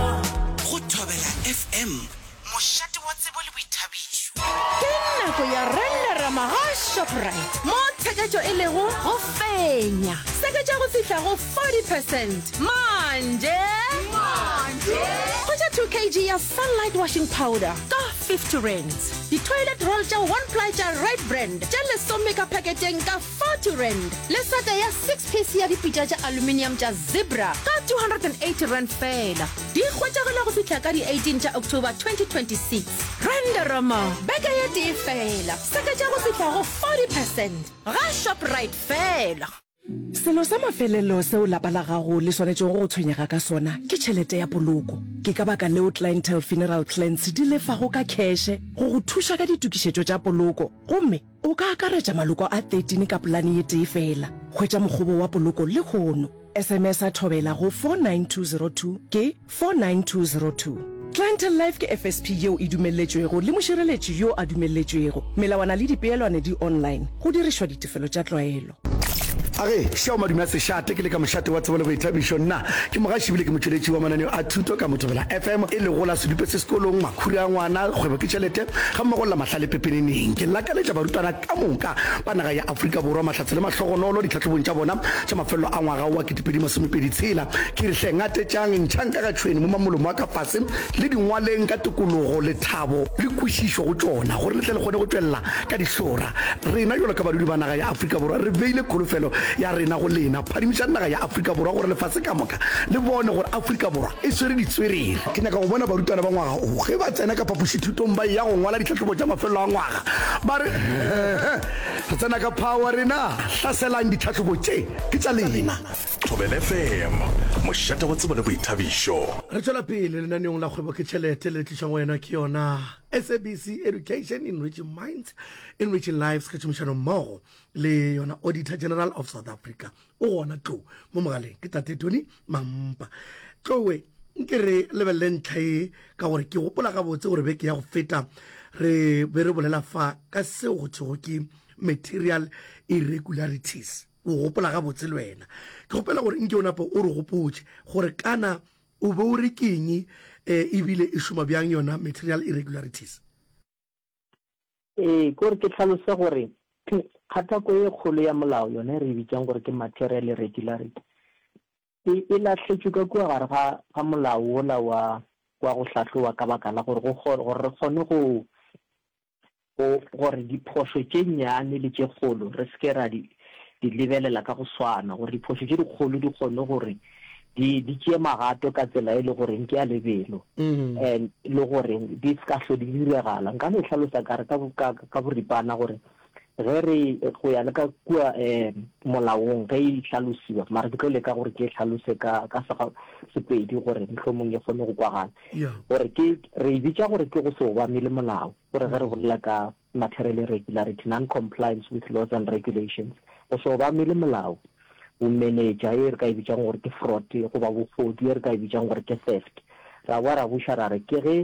Go Thobela FM, mošate wa tsebo le boithabišo. Ke nako ya Renderama ga Shoprite mo tsheketšo e lego go fenya seketša go fihla go 40 percent manje. Hwetša 2 kg ya Sunlight Washing Powder ka 50 rands. Di-toilet roll tša one ply tša Red Brand tše lesome ka paketeng ka 40 rand le sete ya 6 piece ya dipitša tša aluminium tša Zebra ka 280 rand fela. Di hwetšagela go fihla ka di 18 tša October 2026. Renderama beke ye tee fela, seketša go fihla go 40 percent ga Shoprite fela. Selo sa mafelelo seo lapa la gago le swanetšego go tshwenyega ka sona ke tšhelete ya poloko. Ke ka baka leo Clientele Funeral Plans di lefago ka kheshe go go thuša ka ditokišetšo tša poloko gomme O ka akaretša maloko a 13 ka polane ye tee feela. Hwetša mokgobo wa poloko lehono. SMS-a thobela go 49202 ke 49202. Clientele Life ke FSP yeo e dumelletšwego le mošireletši yo a dumelletšwego. Melawana le dipeelwane di online, go dirišwa ditefelo tša tlwaelo. Age šao madume a sešate ke le ka mošate wa tsebo le boithabišo nna ke mogaši bile ke motšweletši wa mananeo a thuto ka mothobela FM e lego la sedupe se sekolong makhuri a ngwana kgwebo ke tšhelete ga mmogo la mahlale pepeneneng ke lakaletša barutwana ka moka ba naga ya Afrika Borwa mahlatse le mahlogonolo ditlhahlobong tša bona tša mafelelo a ngwaga wa ketepedi masomepedi tshela ke re hle ngatetšang ntšhang ka ga tšhweni mo mamolomo a ka fase le dingwaleng ka tokologo lethabo le kwešišo go tšona gore le tle le kgone go tšwelela Ka dihlora, rena bjalo ka badudi ba naga ya Afrika Borwa re beile kholofelo ya rena go lena. Phadimišang naga ya Afrika Borwa gore lefase ka moka le bone gore Afrika Borwa e swere ditswerere. Ke nyaka go bona barutwana ba ngwaga o ge ba tsena ka phapošithutong ba eya go ngwala ditlhahlobo tša mafelelo a ngwaga ba re, Hehe, re tsena ka phawa rena! Hlaselang! Ditlhahlobo tše ke tša lena! Thobela FM, mošate wa tsebo le boithabišo. Re tšwela pele lenaneong la Kgwebo ke Tšhelete le le tlišwago go wena ke yona. SABC Education Enriching Minds, Enriching Lives ka tšhomišano mmogo le yona Auditor General of South Africa o gona tlo mo mogaleng ke tate Tony Mampa tlowe nke re lebelele ntlha e ka gore ke gopola gabotse gore beke ya go feta re be re bolela fa ka seo go thego ke material irregularities o gopola gabotse le wena ke gopela gore nke o nape o re gopotse gore kana O be o re ke eng e bile e šoma bjang yona material irregularities? Ee, ke gore ke hlalose gore kgathako ye kgolo ya molao yona e re e bitšang gore ke material irregularity e e lahletšwe ka kua gare ga ga molao wola wa wa go hlahloba ka baka la gore go gore re kgone go go, gore diphošo tše nnyane le tše kgolo re se ke ra di, di lebelela ka go swana, gore diphošo tše dikgolo di kgone gore di, di tšee magato ka tsela e le goreng ke ya lebelo, mm. and le gore di se ka hlo di diregala. Nka no e hlalosa kare ka, ka, ka boripana gore ge re go ya le ka kua um molaong ge e tlhalosiwa mara ke tlo leka gore ke e tlhalose ka ka sepedi gore mohlomong e kgone go kwagala Gore ke, re e bitša gore ke go se obamele molao, gore ge re bolela ka material irregularity, non-compliance with laws and regulations, go se obamele molao, bomenetša, ye re ka e bitšang gore ke fraud, goba bogodu, ye re ka e bitšang gore ke theft. Ra boa ra buša ra re ke ge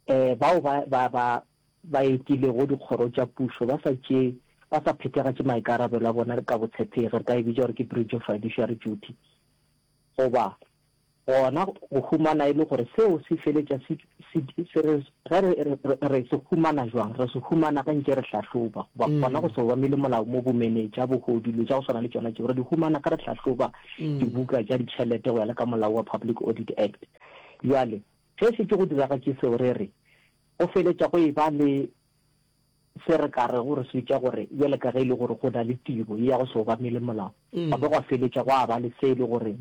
um bao ba, ba, ba, ba etilego dikgoro tša pušo ba sa tšee, ba sa phethagatše maikarabelo a bona ka botshepegi, re ka e bitša gore ke breach of fiduciary duty, goba Gona go humana e le gore seo se feletša se, se, se re, ge re, re, re, re se humana jwang? Re se humana ge nke re hlahloba, goba mm. gona go se obamele molao mo bomenetša, bogodu, dilo tša go swana le tšona tšeo. Re di humana ge re hlahloba mm. dibuka tša ditšhelete go ya le ka molao wa Public Audit Act. Jwale, ge se ke go diragatše seo, re re, go feletša go e ba le Se re ka rego re se hwetša gore bjale ka ge e le gore go na le tiro ye ya go se obamele molao, gwa be gwa feletša gwa ba le se e le gore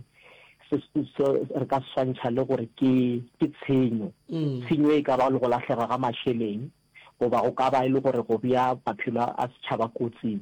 se, se re ka se swantšha le gore ke, ke tshenyo. Tshenyo e ka ba le go lahlega ga mašeleng, goba go ka ba e le gore go bea maphelo a setšhaba kotsing.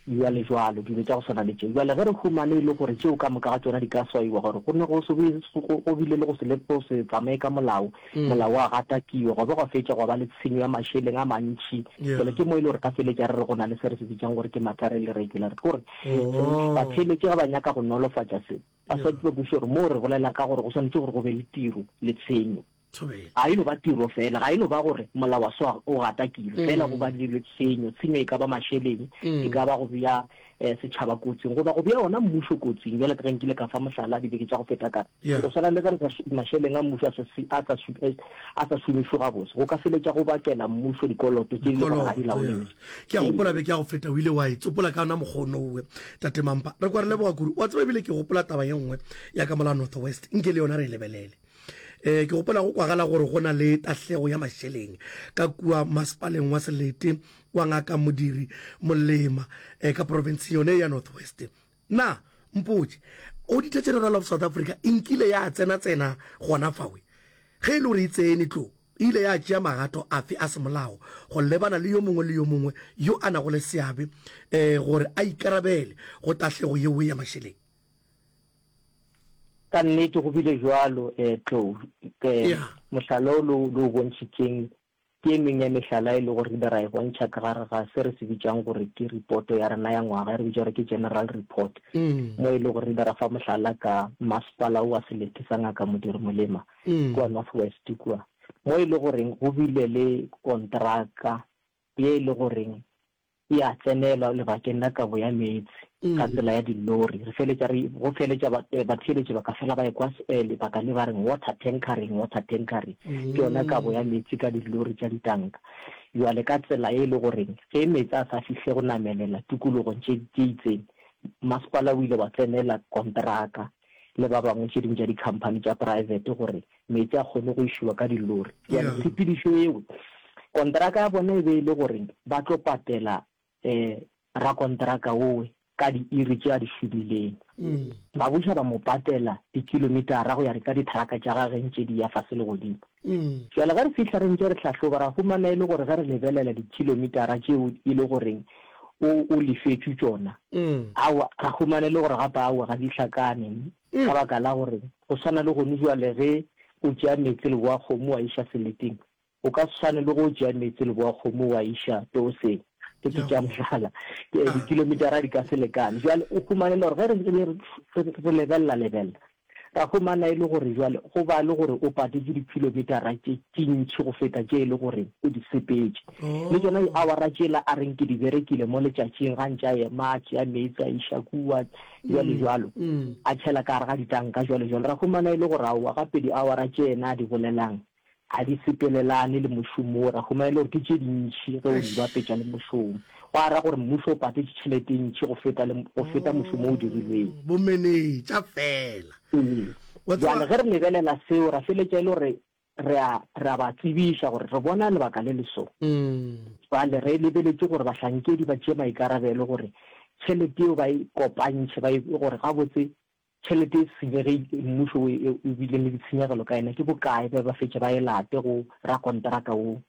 Bjalejwalo, dilo tša go swana le tše. Bjale ge re humane e le gore tšeo ka moka ga tšona di ka swaiwa, gore go ne go se be go, go bile le go se, le go se tsamaye ka molao, molao wa gatakiwa, gwa be gwa fetša gwa ba le tshenyo ya mašeleng a mantši. Bjale ke mo e le gore re ka feletša re re go na le se re se bitšang gore ke matare le regular. Ke gore batheeletši ge ba nyaka go nolofatša se, ba swanetše ba kwešiše gore moo re bolela ka gore go swanetše gore go be le tiro le tshenyo. Ga e no ba tiro fela, ga e no ba gore molao wa swa o gatakilwe fela goba dirilwe tshenyo, tshenyo e ka ba mašeleng, e ka ba go bea setšhaba kotsing goba go bea wona mmušo kotsing, bjalo ka ge nkile ka fa mohlala dibeke tša go feta ka re, go swana le ge re sa mašeleng a mmušo a sa šomišwe gabotse, go ka feletša go bakela mmušo dikoloto tše e le gore ga di laolegwe. Ke a gopola beke ya go feta o ile wa e tsopola ka yona mokgwa o nowe, Tate Mampa. Re kwa re leboga kudu. O a tseba e bile ke gopola taba ye nngwe ya ka mola North West, nke le yona re e lebelele. eh ke gopola go kwagala gore go na le tahlego ya mašeleng ka kua masepaleng wa selete wa ngaka modiri molema eh ka province yone ya north west na mpotse auditor general of south africa e nkile ya tsena tsena gona fawe ge e le gore e tsene tlo e ile ya tšea magato afe a semolao go lebana le yo mongwe le yo mongwe yo a nago le seabe um gore a ikarabele go tahlego yeo ya mašeleng Ka nnete go bile bjalo, eh, tlou. Ke, Yeah. mohlala o le o, le o bontšhitšeng ke e meng ya mehlala e lego gore re be ra e bontšha ka gare ga se re se bitšang gore ke ripoto ya rena ya ngwaga, e re bitša gore ke General Report, Mm. mo e lego gore re be ra fa mohlala ka masepala o wa Selete sa Ngaka Modiri Molema Mm. kua North West kua, mo e le goreng go bile le kontraka ye e le goreng e a tsenelwa lebakeng la kabo ya meetse ka tsela ya dillori. Re feletša re, go feletša ba, eh, batheeletši ba ka fela ba ekwa s, eh, lebaka le ba reng water tankering, water tankering, ke yona kabo ya meetse ka dillori tša ditanka. Bjale ka tsela ye e le goreng ge meetse a sa fihle go namelela tikologong tše, tše itseng, masepala o ile wa tsenela konteraka. le ba bangwe tše dingwe tša dikhamphani tša poraefete gore meetse a kgone go išiwa ka dillori. Bjale tshepedišo yeo, konteraka ya bona e be e le gore ba tlo patela um rakonteraka wowe ka diiri tše a di šomileng. Ba buša ba mo patela dikilomitara go ya ka ditharaka tša gageng tše di ya fase le godimo. Ii. Bjale ge re fihla re ntše re hlahloba, ra humana e le gore ge re lebelela dikhilomitara tšeo e le goreng o, o lefetšwe tšona, aowa, ra humana e le gore gape aowa ga di hlakane, ka baka la gore go swana le gone bjale ge o tšea meetse le boakgomo wa iša seleteng, o ka se swane le ge o tšea meetse le boakgomo wa iša tooseng, ke ke tša mohlala, ke, dikhilomitara di ka se lekane. Bjale o humane le gore ge re, re, re, re lebelela-lebelela, Ra humana e le gore jwale go ba le gore o patetše dikhilometara tše tše ntši go feta tše e le gore o di sepetše. Le tšona diawara tšela a reng ke di berekile mo letšatšing, gantši a ema a tšea meetse a iša kua, bjalejwalo, a tšhela ka gare ga ditanka, bjalejwalo. Ra humana e le gore aowa, gape diawara tše yena a di bolelang, ga di sepelelane le mošomo wo. Re a humana e le gore ke tše dintši ge o di bapetša le mošomo. Gwa ra gore mmušo o patetše tšhelete e ntši go feta le, go feta mošomo o dirilweng. Oh, bomenetša fela. Ee. Wa tseba- Bjale ge re lebelela seo, ra feletša e le gore re a, re a ba tsebiša gore re bona lebaka le le so. Bjale re lebeletše gore bahlankedi ba tšee maikarabelo gore tšhelete yeo ba e kopantšhe, ba e, gore gabotse Tšhelete e senyegile, mmušo wo e o bile le ditshenyegelo ka yena ke bokae ge ba fetše ba e late go rakonteraka wo?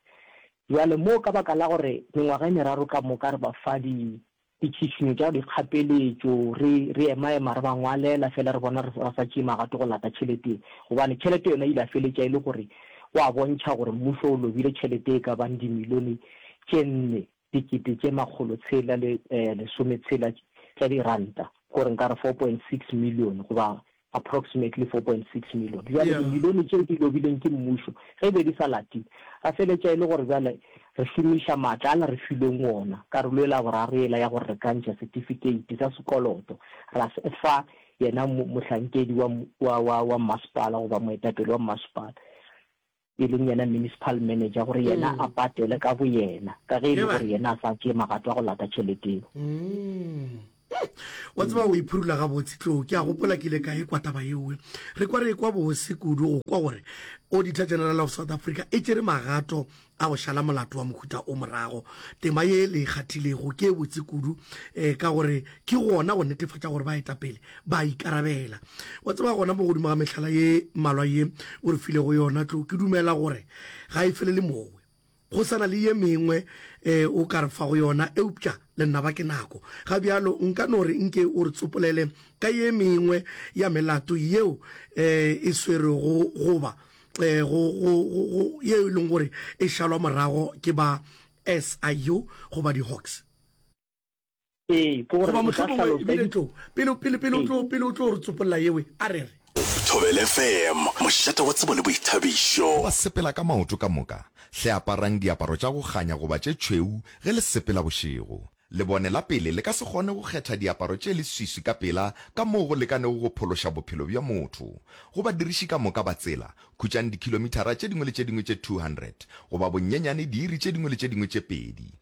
Bjale mo ka baka la gore mengwaga e meraro ka moka re ba fa di ditšhitšhinyo tša dikgapeletšo, re re emaema re ba ngwalela fela re bona re sa tšee magato go lata tšhelete ye, gobane tšhelete yona e ile ya feletša e le gore o a bontšha gore mmušo o lobile tšhelete e ka bang dimilione tše nne. dikete tše makgolo tshela le lesome tshela tša diranta, gore nka re 4.6 millione goba approximately 4.6 millione. Bjale dimilione tšeo di lobilweng ke mmušo ge e be di sa latiwe, ra feletša e le gore bjale re šomiša maatla ala re filweng ona, karolo ela ya boraro yela ya gore re ka ntšha setifikeiti sa sekoloto ra se fa yena mohlankedi wa, wa, wa, wa mmasepala goba moetapele wa mmasepala. e leng yena municipal manager, gore yena a patele ka boyena, ka ge e le gore yena a sa tšee magato a go lata tšhelete yeo. Wa tseba, o iphurula gabotse. Tlou, ke a gopola ke ile ka e kwa taba yeoe. Re kwa re e kwa bose kudu go kwa gore Auditor General of South Africa e tšere magato a go šala molato wa mohuta o morago. Tema ye le e kgathilego ke e botse kudu, um ka gore ke gona go netefatša gore baetapele ba a ikarabela. Wa tseba, gona mo godimo ga mehlala ye mmalwa ye o re filego yona, tlo, ke dumela gore ga e felele mowe. Go sa na le ye mengwe e o ka re fago yona, eupša lenaba ke nako. Ga bjalo nka no re nke o re tsopolele ka ye mengwe ya melato yeo e e swerwego goba e go, go, go, go, yeo e leng gore e šalwa morago ke ba SIU goba di-Hawks. ee, goba mohlomongwe ebile tlo pele pele pele o tlo pele o tlo re tsopolola yewe a re re Thobela FM, mošate wa tsebo le boithabišo. Go ba sepela ka maoto ka moka, hle aparang diaparo tša go kganya goba tše tšhweu ge le sepela bošego. Lebone la pele le ka se kgone go kgetha diaparo tše leswiswi ka pela ka moo go lekanego go phološa bophelo bja motho. Go badiriši ka moka ba tsela, khutšang dikhilomithara tše dingwe le tše dingwe tše 200, goba bonyenyane diiri tše dingwe le tše dingwe tše pedi,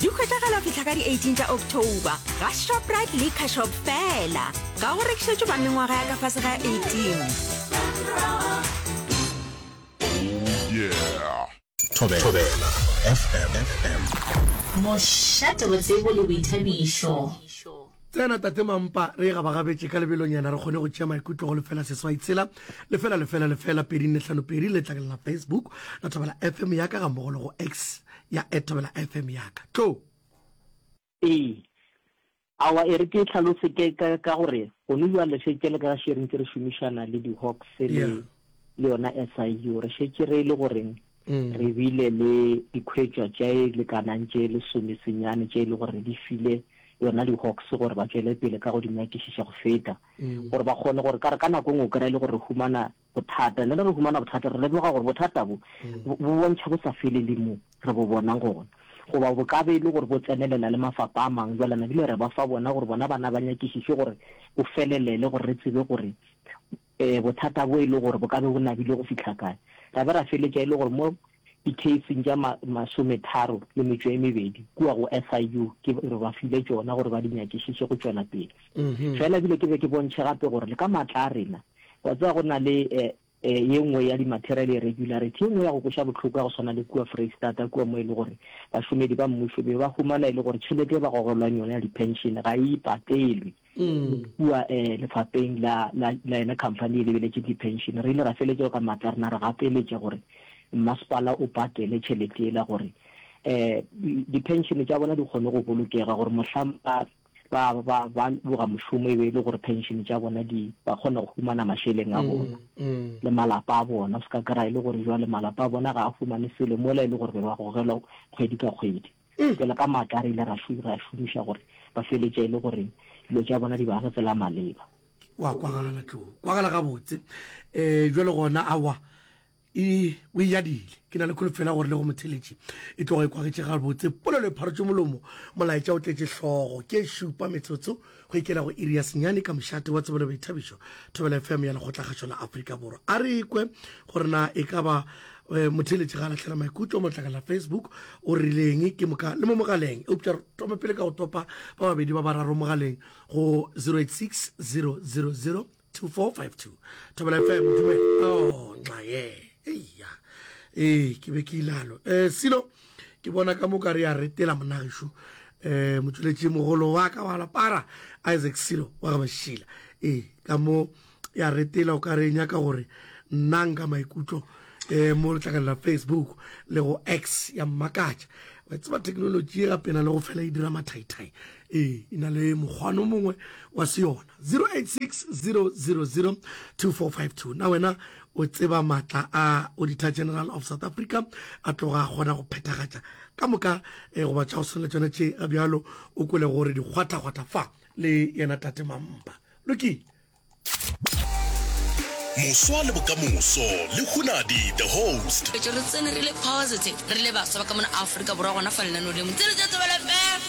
di hwetšagala go fihla ka di-18 tša october ga shoprite le cashop fela ga go rekišetšo ba mengwaga ya ka fase ga 18 mošate botsebo le boithabišo tsena tate mampa re e gabagabetše ka lebelonyana re kgone go tšea maikutlo go lefela seswai tshela lefela lefela lefela pedi nne tlhano pedi le tlakelela facebook la thobela fm ya ka gammogo le go x ya Ethabela FM ya ka. Tlo! Ee. Awa e re ke e hlalose ke ka, ka gore gone bjale še tšele ka ga Sharing tse re šomišana le di-Hawks le, Yeah. le yona SIU. Re šetše re le goreng Mm. re bile le dikhwetšwa tše lekanang tše lesomesenyane tše e le gore re di file yona di-Hawks gore ba tšwele pele ka go di nyakišiša go feta Mm. gore ba kgone gore ka re ka nako nngwe o kry-e le gore re humana Bothata, le ge re humana bothata, re lemoga gore bothata bo, bo bontšha bo sa felele mo re bo bonang gona. Goba bo ka be e le gore bo tsenelela le mafapa a mangwe, bjale na bile re ba fa bona gore bona bana ba nyakišiše gore bo felelele gore re tsebe gore bothata bo e le gore bo ka be bo nabile go fihla kae. Ra be ra feletša e le gore mo Dikheising tša ma, masometharo le metšo e mebedi kua go SIU, ke re ba file tšona gore ba di nyakišiše go tšwela pele. Feela ebile ke be ke bontšhe gape gore le ka maatla a rena, wa tseba go na le e, e, ye nngwe ya di-material irregularity, ye nngwe ya go kweša bohloko ya go swana le kua Freistata kua mo e le gore bašomedi ba mmušo be ba humana e le gore tšhelete e ba gogelwang yona ya di-pension ga e patelwe. Kua lefapheng la la yona khamphani e lebeletšeng diphenšene, re ile ra feletšego ka matla re na re gapeletša gore mmasepala o patele tšhelete yela gore diphenšene tša bona di kgone go bolokega gore mohlang ba ba ba ba boga mošomo e be e le gore phenšene tša bona di ba kgona go humana mašeleng a bona le malapa a bona. O se ka kry-a e le gore jwale malapa a bona ga a fumane selo mola e le gore be ba gogelwa kgwedi ka kgwedi. Pele ga maaka, re ile ra ra šomiša gore ba feletše e le gore dilo tša bona di ba re tsela maleba. Wa kwagala tlo kwagala gabotse um jwale gona awa e o e yadile ke na le kholofela gore le go motheletši e tloga e kwagetše gabotse polelo e pharotše molomo molaetša o tletše hlogo ke e šupa metsotso Go ikela go iri ya senyane ka mošate wa Tsebelo Boithabišo, Thobela FM ya Lekgotlakgašo la Afrika Borwa. A re ikwe gore na e ka ba eh, motheletši ga lahlela maikutlo mo letlakeng la Facebook o rileng ke moka le mo mogaleng. Eupša re tome pele ka go topa ba babedi ba bararo mogaleng go 086 000 2452 thobela fm dume oh nxa ye eya ee ke be ke ilalo um silo ke bona ka moka re a retela monagešu um motšweletši mogolo wa ka wa lapara isaac silo wa ga bašila ee ka mo ya retela o ka re nyaka gore nna nka maikutlo um mo letlakane la facebook le go x ya mmakatša wa tseba thekenoloji e gapena le go fela e dira mathaithai ee e na le mokgwano mongwe wa se yona 0860002452 na wena o tseba matla a auditor general of south africa a tloga a kgona go phethagatša ka moka eh, goba tša go swana le tsone tše ga bjalo o kwele gore dikgwathakgwatha fa le yena tate mampa lokile moswa le bokamoso le hunadi the host re tsene re le positive re le baswa ba ka mona aforika borwa gona fa lenaneo lengwe tsere tsa tsobelefela